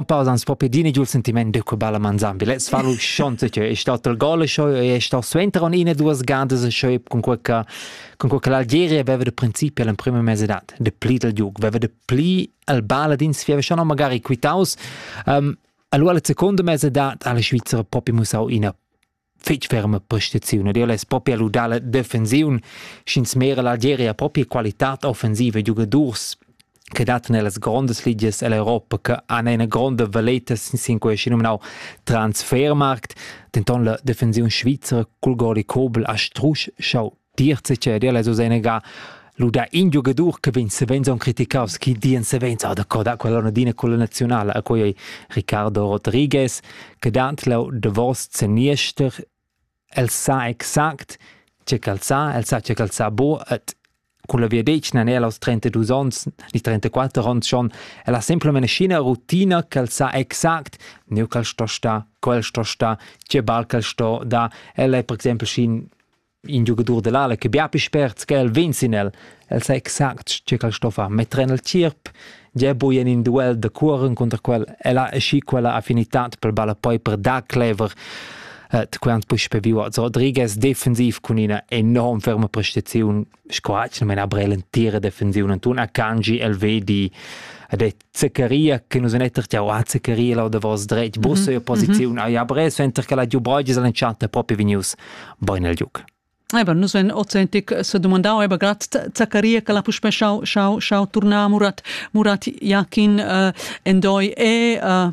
un po' ans po pedini giù il sentimento che balla manzambi let's fallo schonte che è stato il gol show e è stato suenter un ine due sgande show con quella con quella Algeria aveva da principio nel primo mese d'edat de pli del giug aveva de pli al balla din si aveva schon magari quitaus um, allora il secondo mese d'edat alla Svizzera proprio musau ina fetg ferma prestaziun ed el es propi a ludar la defensiun sch'ins mera l'Algeria propi qualità offensiva giugadurs che dat nellas grondas ligias ell'Europa che han ina gronda valeta sin quei nominau transfermarkt denton la defensiun svizra cul gol Kobel a Strusch schau Dir seceder la Susenega ludà in giogadur che vegn savens on criticaus chi dien savens ah da quella dina quella nazionala a quei Ricardo Rodriguez che dant lau davos zeniester el sa exact ce ch'el sa el sa ce ch'el sa bo et con la via dec nan el aos 32 ons ni 34 ons schon el ha sempre menescina rutina ch'el sa exact neu ch'el sto sta quel sto sta che bal ch'el sto da el è per exempel schin in giugadur dell'ala che bia pli spert che el vegn sin el. El sa exact che quel sto far metter en el tierp. Gia bui en in duel de cuoren contra quel, el ha asci quella affinitad per balla poi per da clever. Et quant pus pe viu Rodriguez defensiv cun ina enorm ferma prestaziun sco ha mena brel entira defensiun Anton Akanji el vedi ed è Zaccaria che nus en etter jau a Zaccaria lau davos dretg bus e posiziun ai abres venter che la giu brogis an enchanta propi vinius boin el giuc. Eba, nus en ozentic se domandau eba grad Zaccaria che la puspe schau schau schau turnar Murat Murat Jakin uh, endoi e uh,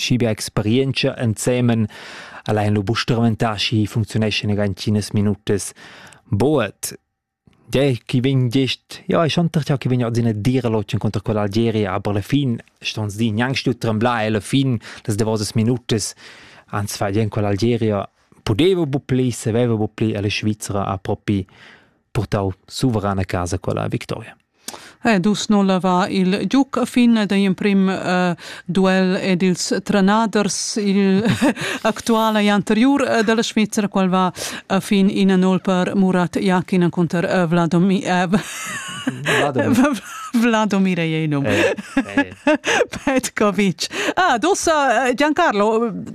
schi bia experientscha ensemen al ein lu buc strumentar schi funcziuneschan ina tschinas minutas buat Gei, chi vegn gest, ja, è schon ja, chi vegn adina dir l'otschen conter quella Algeria, aber la fin ston di gnanc stu tremblar e la fin das davosas minutas ans fa bien quell'Algeria pudeva bu pli, saveva bu pli e la Svizzera ha propi purtau suverana casa quella victoria. Eh, dus nulla va il giuc a fin da imprim uh, duel ed ils Tranaders il actuala e anterior uh, della Svizzera qual va a fin ina null per Murat Jakin contro uh, Vladomir Vladomir Einom Petkovic. Ah, dosa Giancarlo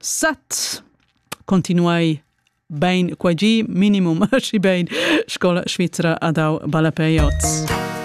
Set continuai bain qua gi, minimum schi bain sco la Svizra ha dau ballapei oz.